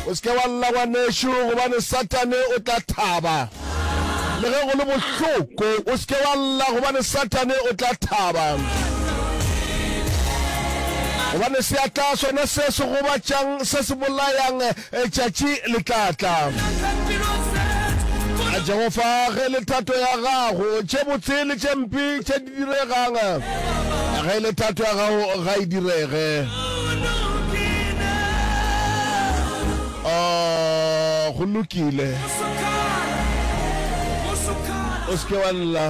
O se ke wa lla, ngwanešu, gobane Satane o tla thaba. Le ge go le bohloko, o se ke wa lla, gobane Satane o tla thaba. Gobane seatla sona se se gobatšang, se se bolayang, tšatši le tla tla. A Jehofa, ge le thato ya gago, tše botse le tše mpe tše Diregang ge le thato ya gago ga e direge. Oh, go lokile. O se ke wa lla.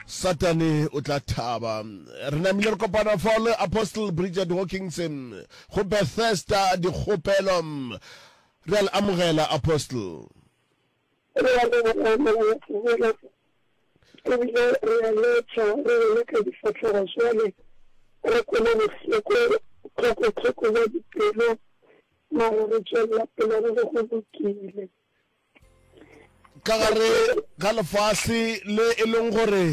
satane o tla thaba re namile re kopana fa le apostle bridget hawkinson go bethesda dikgopelo re a le amogela apostle Re a leboga Mongwadi Moleko, e bile re a letša re wele ka difahlogo bjale re kwele bohloko tlhoko-tlhoko bja dipelo, mara re tšwelela pele re re go lokile. Ka gare ga lefase le e leng gore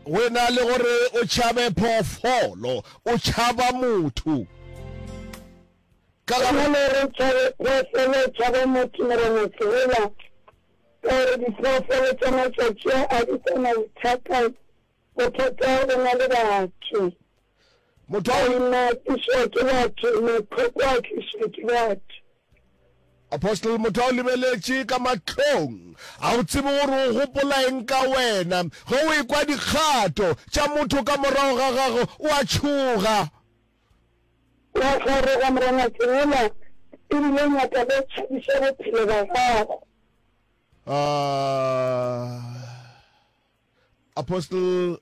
go e na le gore o tšhabe phoofolo, o tšhaba motho. Ka la bo. Bjale re tšhabe phoofolo, tšhaba motho, Morena Sehela, ka gore diphoofolo tša matšatši a a di sa na bothata, bothata bo na le batho. Motho a. Maina a tlišwa ke batho, mahloko a tlišwa ke batho. Apostle, motho a o lebeletše ka mahlong, a o tsebe gore o gopola eng ka wena. Ge o ekwa dikgato tša motho ka morago ga gago, o a tšhoga. Wa kgaroga morangwathi wola e bile o nyaka le tšhabiša bophelo ba gago. Apostle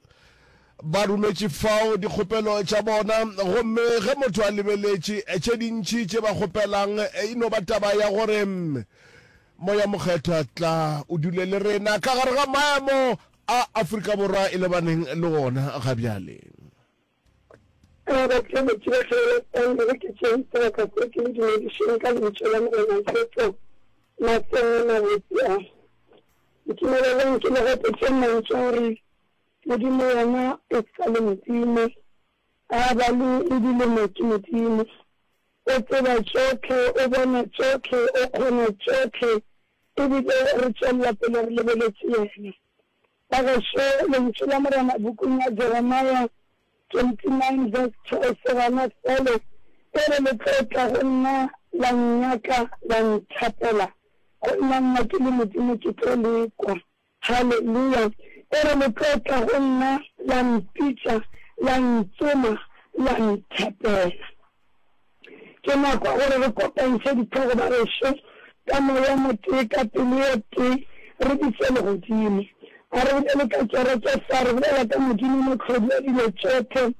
ba rumetše fao dikgopelo tša bona gomme ge motho a lebeletše tše dintši tše ba kgopelang e no ba taba ya gore moya mokgethwa tla o dule le rena ka gare ga maemo a Afrika Borwa e lebaneng le ona ga bjale. A ba tseba ke ba hlabela setaende ge ke tšere sebaka se ke le dumedišeng ka lentšu la Morena Jesu mahlong a mabotse a. Ntumeleleng ke le gopotše mantšu a re, Modimo yena e sa le Modimo, a ba le le dilemo ke Modimo. O tseba tšohle, o bona tšohle, o kgona tšohle, e bile re tšwelela pele re lebeletše yena. Bagešo, Lentšu la Morena pukung ya Jeremia 29 verse 12 gona felo e re, Le tlo tla go nna la nnyaka, la nthapela, go nna nna ke le Modimo ke tlo le kwa. Haleluya! E re, Le tlo tla go nna, la mpitša, la ntsoma, la nthapela. Ke nako ya gore re kopantšhe ditlhogo ba gešo ka moya o motee, ka pelo e tee, re di fe legodimo. A re bolele ka kereke fa re bolela ka Modimo Mohlodi wa dilo tšohle,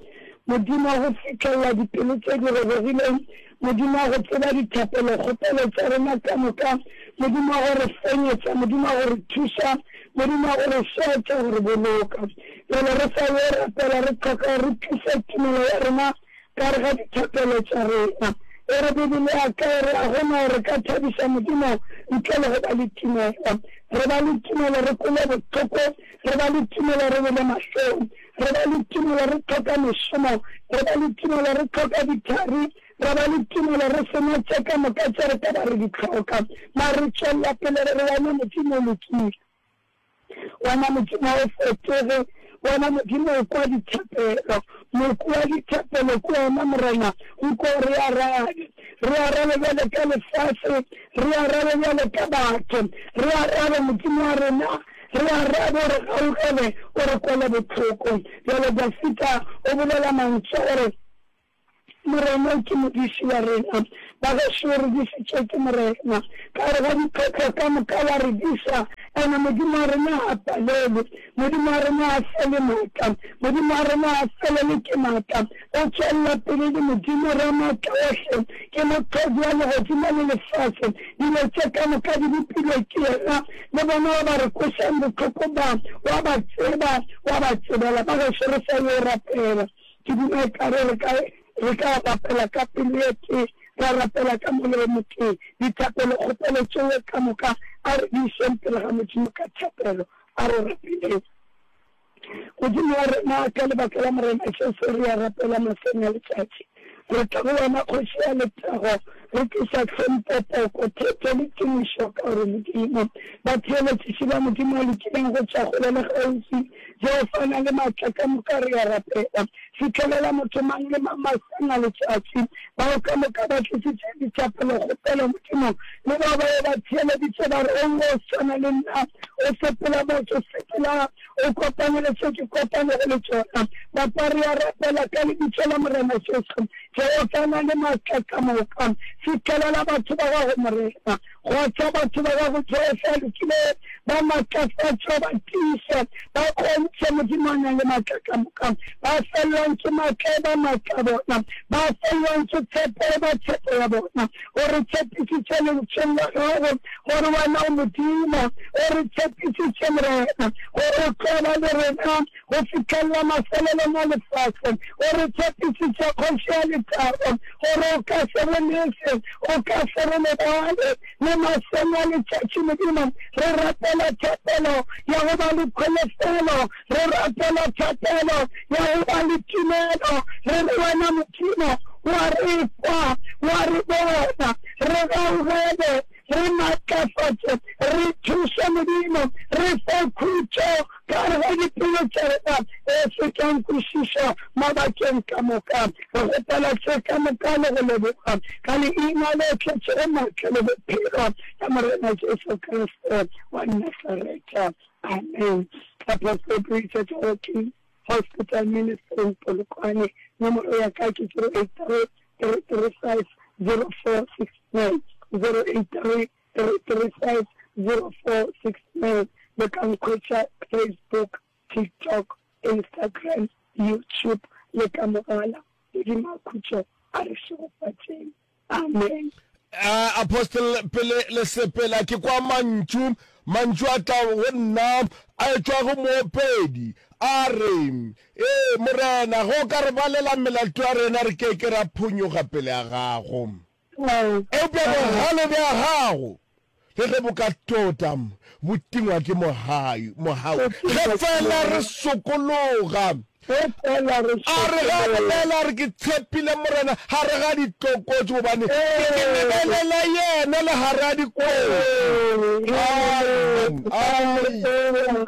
Modimo wa go fihlelela dipelo tše di robegileng, Modimo wa go tseba dithapelokgopelo tša rena ka moka, Modimo wa go re fenyetša, Modimo wa go re thuša, Modimo wa go re šetša, go re boloka. Bjale re sa yo rapela, re hloka gore re tliše tumelo ya rena Ka re ga dithapelo tša rena. E re Bibele ya ka e re ga go na gore ka thabiša Modimo ntle le go ba le tumelo. Re ba le tumelo re kwele bohloko, re ba le tumelo re bele mahlong, re ba le tumelo re hloka mešomo, re ba le tumelo re hloka dithari, ra ba le tumelo re se na tše ka moka tše re ka ba re di hloka. Mare re tšwelela pele re re wena Modimo o lokile. Wena Modimo ga o fetoge, Wena Modimo o kwa dithapelo, Moki wa dithapelo ke wena, Morena, nko re arabe. Re arabe bjale ka lefase, re arabe bjale ka batho, re arabe, Modimo wa rena, re arabe, o re gaugele, o re kwele bohloko. Bjale Dafida o bolela mantšu a gore. Morena ke Modiši wa rena. Bagešo, re dišitšwe ke Morena. Ka gare ga dikgwetlho ka moka wa re diša, and-e Modimo wa rena ga a palelwe. Modimo wa rena ga a fele maatla. Modimo wa rena ga a felelwe ke maatla. O tšwelela pele e le Modimo Ramaatlaohle. Ke Moqogi wa legodimo le lefase. Dilo tše ka moka di bopilwe ke yena. Le bona wa ba re kwešang bohloko ba, wa ba tseba, wa ba tsebela. Bagešo, re sa yo rapela. Ke duma ekare re ka re ka rapela ka pelo e tee, ra rapela ka moya o motee. Dithapelokgopelo tšeo ka moka a re di išeng pele ga Modimo ka thapelo. A re rapeleng. Modimo wa rena, ka lebaka la Morena Jesu re a rapela mahlong a letšatši. Re tla go Wena, Kgoši ya lethabo. Ge ke sa hlompho poko, thete le tumišo ka go Modimo. Batheeletšiši ba Modimo a lokileng go tšwa kgole le kgaufsi, Jehofa a na le matla ka moka, re a rapela. Fihlelela motho mang le mang maseng a letšatši, bao ka moka ba tlišitše dithapelo, kgopelo, Modimo, le bao ba be ba theeleditše ba re, O swana le nna, o sepela, motho, sepela. o kopane le tše ke kopanego le tšona. Napa rea rapela, Ka Lebitso la Morena Jesu, Jehofa o na le matla ka moka. Fihlelela batho ba Gago, Morena. Kgotha batho ba Gago, Jehofa a lokilego. Ba matlafatše, o ba tiiše. Ba kgontšhe, Modimo a nang le matla ka moka. Ba fellwang ke matla, e ba matla a bona. Ba fellwang ke tshepo, e ba tshepo ya bona. O re tshepisitše Lentšheng la Gago gore Wena o Modimo. O re tshepisitše, Morena, gore O tlo ba le rena go fihlelela mafelelong a lefase. O re tshepisitše, Kgoši ya Lethabo, gore O ka se re lese, O ka se re lebale. Le mahlong a letšatši, Modimo, re rapela thapelo ya go ba le kholofelo Re rapela thapelo ya go ba le tumelo, re re, Wena Modimo, o a re kwa, o a re bona. Re gaugele, re matlafatše, re thuše, Modimo. Re fe khutšo gare ga dipelo tša rena e se keng kwešišwa mabakeng ka moka. Re kgopela tše ka moka le go leboga, ka Leina le tletšego matla le bophelo la Morena Jesu Kriste wa Nasareta. Amen. Ka passport o itša tša go ke Hospital Ministry in Polokwane. Nomoro ya ka ke 08335046908333504690. Le ka nkhwetša Facebook, TikTok, Instagram, YouTube le ka mogala. Modimo a khutšo a re šegofatšeng. Amen. Uh, apostle pele le sepela ke kwa mantšu mantšu a tla go nna a etšwa go moopedi a re ee morena go ka re balela melato ya rena re ke ke ra phonyoga pele ya gago eupša bogale bja gago Le ge bo ka tota bo tingwa ke mohau, ge feela re sokologa. A re ge a bolela a re, Ke tshepile Morena gare ga ditlokotšo, gobane ke ke lebelela yena le gare ga dikotsi. Amen. Amen.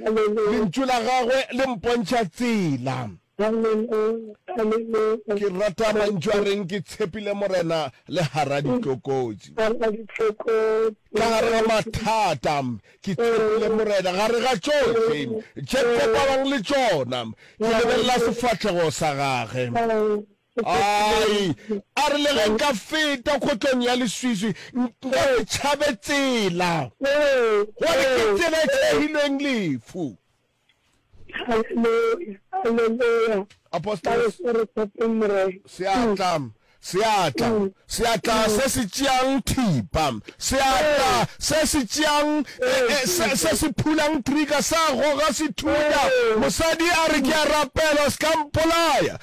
Lentšu la gagwe le mpontšha tsela. Ke rata mantšu a reng ke tshepile Morena le gar'a ditlokotši. Ka gare ga mathata ke tshepile Morena, gare ga tšohle tše kopanang le tšona ke lebelela sefahlego sa gage. Ai, a re le ge nka feta kgotlong ya leswiswi, nka se tšhabe tsela, gobane ke tsela e tšhegilweng lefu. Haleluya, haleluya. Apostolo, seatla, seatla, seatla se se tšeang thipa, seatla se se tšeang, e, e, se, se se phulang trigger, sa goga sethunya. Mosadi a re, Ke a rapela, o se ka mpolaya.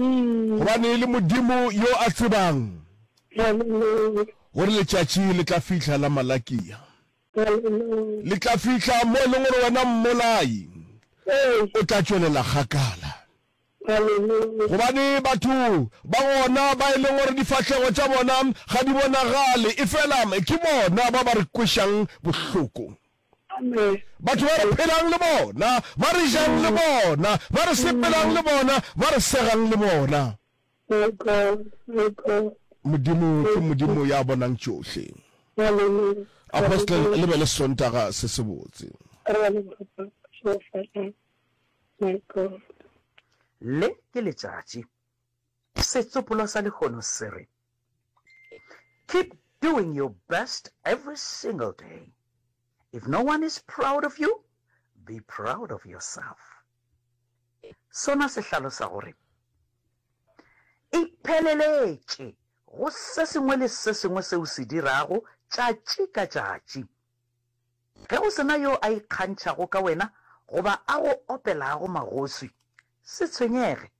gobane e le Modimo yo a tsebang gore letšatši le tla fihla la malakia. Le tla fihla mo e leng gore wena mmolai o tla tšwelela kgakala. Gobane batho ba gona ba e leng gore difahlego tša bona ga di bonagale, efela ke bona ba ba re kwešang bohloko. Batho ba re phelang le bona, ba re jang le bona, ba re sepelang le bona, ba re segang le bona. Modimo ke Modimo ya bonang tšohle. Apostle, le be le Sontaga se sebotse. Le ke letšatši. Setsopolo sa lehono se re. Keep doing your best every single day. If no one is proud of you, be proud of yourself. Sona se hlalosa gore ipheleletše go se sengwe le se sengwe se o se dirago tšatši ka tšatši. Ge go sena yo a ikgantšhago ka wena goba a go opelago magoswi, se tshwenyege.